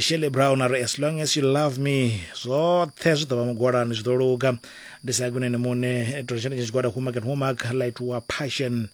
shirley brown ari as long as you love me zwoṱhe zwi ḓo vha mugwalani zwi ḓo luga ndi sa kunene muṋe tori tshenetshe tshigwada homework and homework light wa passion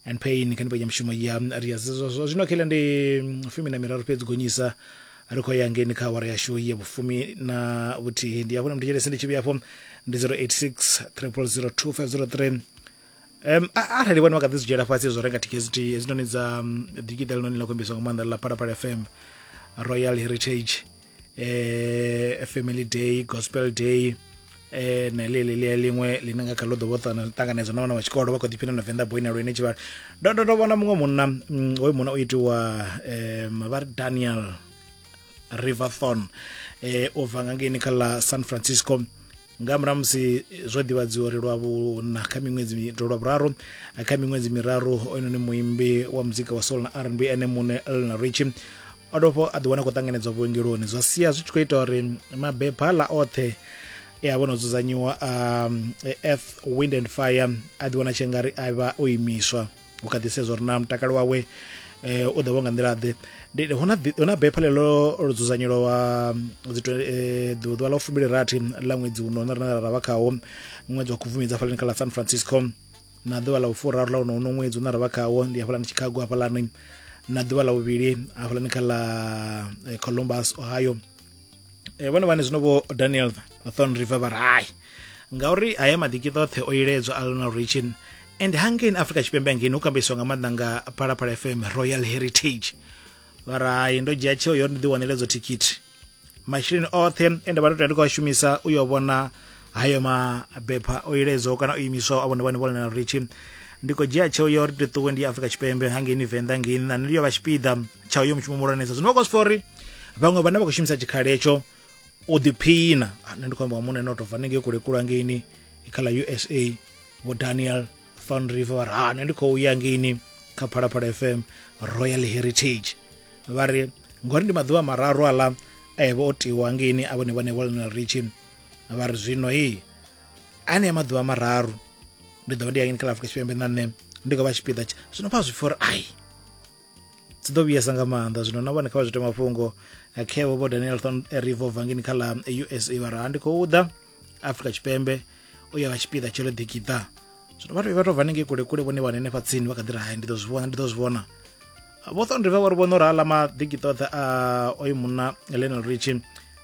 and pain kha ndipenya mushumo ya ria zwo zwino khele ndi mm, fumi na miraru fhedzi gonyisa ri khou ya ngeni kha awara yashu ya vhufumi na vhuthihi ndi hafho na mutetshelese ndi tshi vhuya afho ndi 086 3002503 um arali vhone vha kha ḓi zwi dzhiela fhasi zwo renga tkt hezwinoni dza digital noni ḽa khombiso nga maanḓa ḽa phalaphala fm royal heritage eh family day gospel day eh na ḽe ḽe ḽe ḽiṅwe ḽine nga kha ḽo ḓo vhoṱana ṱanganedza na vhana vha tshikolo vha kho ḓi phina na venḓa boy na lwene tshivhala ndo ndo ndo vhona muṅwe munna mm, hoyu munna o itiwa eh vha ri daniel riverthon eh o bva nga ngeni kha ḽa san francisco nga murahu musi zwo ḓivhadziwa uri lwa vhuna kha miṅwedzi mi- lwa vhuraru kha miṅwedzi miraru oynoni muimbi wa muzika wa soul na rnb ene muṋe elna richi o dovha a ḓiwana a khou ṱanganedzwa vhuongeloni zwa sia zwi tshi khou ita uri mabepha ḽa oṱhe e a vho no dzudzanyiwa a um, earth wind and fire a ḓiwana tshengari a vha o imiswa u kha ḓi sedza uri na mutakalo wawe eh, u ḓovha nga nḓila ḓe hu na bepha ḽeḽo lo dzudzanyelo wa eh, ḓuvha ḽa fumili rathi ḽa ṅwedzi uno na rina ra vha khawo ṅwedzi wa khubvumedza hafhalani kha ḽa san francisco na ḓuvha ḽa u furaru ḽa uno uno ṅwedzi une ra vha khawo ndi hafhalani chicago hafhalani na ḓuvha ḽa vhuvhili hafhalani kha ḽa eh, columbus ohio e vhone vhane zwino vho daniel thon river vha ri hai ngauri haya maḓiki ṱoṱhe o iledzwa a lionel richin and hangeni afrika tshipembe angeni hu kambiswa nga maanḓa nga phalaphala fm royal heritage vha ri hai ndo dzhia tsheo yo ndi ḓiwanela idzo thikhithi masheleni oṱhe e nda vha ndo tea ndi khou a shumisa u yo vhona hayo mabepha o iledzwaho kana o imiswaho a vhone vhane vho lana ritshi ndi khou dzhia tsheo ya uri ndi ṱuwe ndi afrika tshipembe hangeini venḓa ngeini na niliyo vha tshipiḓa tsha uyo mushumo muhulwanesa zwino vha khou sifha uri vhaṅwe vhane vha khou shumisa tshikhala hetsho u ḓiphina ah, nṋe ndi khou amba wa muṋe no tou bva ningei kule kulu hangeini kha ḽa usa vho daniel fan river vha ri ha nṋe ndi khou ya ngeini kha phalaphala fm royal heritage vha ri ngori ndi maḓuvha mararu aḽa a eh, yevha o tiwa ngeini a vhone vhane vho lionel richin vha ri zwino hei anea maḓuvha mararu ndi ḓo vha ndi yangeni kha la afrika tshipembe na nṋe ndi khou vha tshipiḓa tsha zwino pfa zwipfa uri ai dzi ḓo vhuyesa nga maanḓa zwino na vhone kha vha zwi tea mafhungo khevo vho daniel thon rivo vangeni kha la usa vha ra ndi khou ḓa afrika tshipembe u ya vha tshipiḓa tsho ḽeḓikiḓa zwino vhathu vha tou bva nengei kule kule vhone vha hanenefha tsini vha kha ḓi ri hai ndi ḓo zwi vhona ndi ḓo zwi vhona vho thon river vhari vhono rala maḓikiṱo oṱhe a oyu munna lenel richi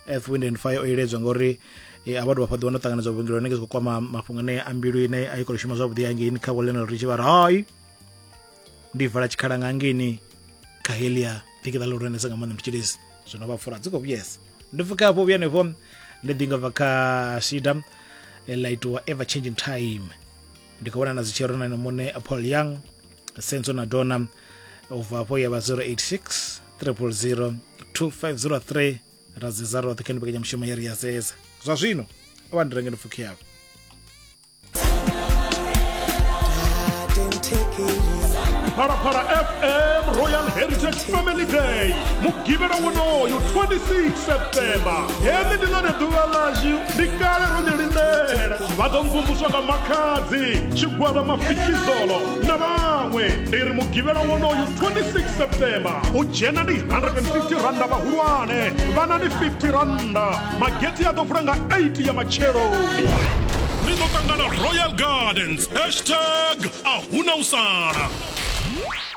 earth wind and fire o iledzwa ngauri e, a vha dovha fhaḓiwa no ṱanganedza vhuongeloni ke zwi khou kwama mafhungo ane a mbilu ine a i khou shuma zwavhuḓi hangeini kha vho lenel richi vha ri hai ndi vala tshikhala nga hangeini kha helia ḓikiṱa ḽi hulwanesa nga maanḓa mutshilisi zwino vha fura dzi khou vhuyesa ndi pfuka hafho vhuya henefho ndi ḓinga bva kha shida eh, ḽa itiwa ever changing time ndi khou vhona na zwi tshirona na muṋe paul young senzo na dona u bva afho ya vha 086 000 2503 ra dzedza roṱhe kha ni mbekanyamushumo ya ri ya dzedza zwa zwino a vha ndirengeni pfukhi yavho phalaphala fm royal heritage family day mugivhela wonoyo 26 septemba heḽi ndi ḽone ḓuvha ḽashu ndi kale ro ni lindela vha ḓo mvumvuswa nga makhadzi tshigwada mafikizolo na vhaṅwe ndi ri mugivhela wonoyu 26 septemba u dzhena ndi 150 randa vhahulwane vhana ndi 50 randa mageti a ḓo vula nga 8 ya matsheloni ni ḓo ṱangana royal gardens hashtag a huna u sala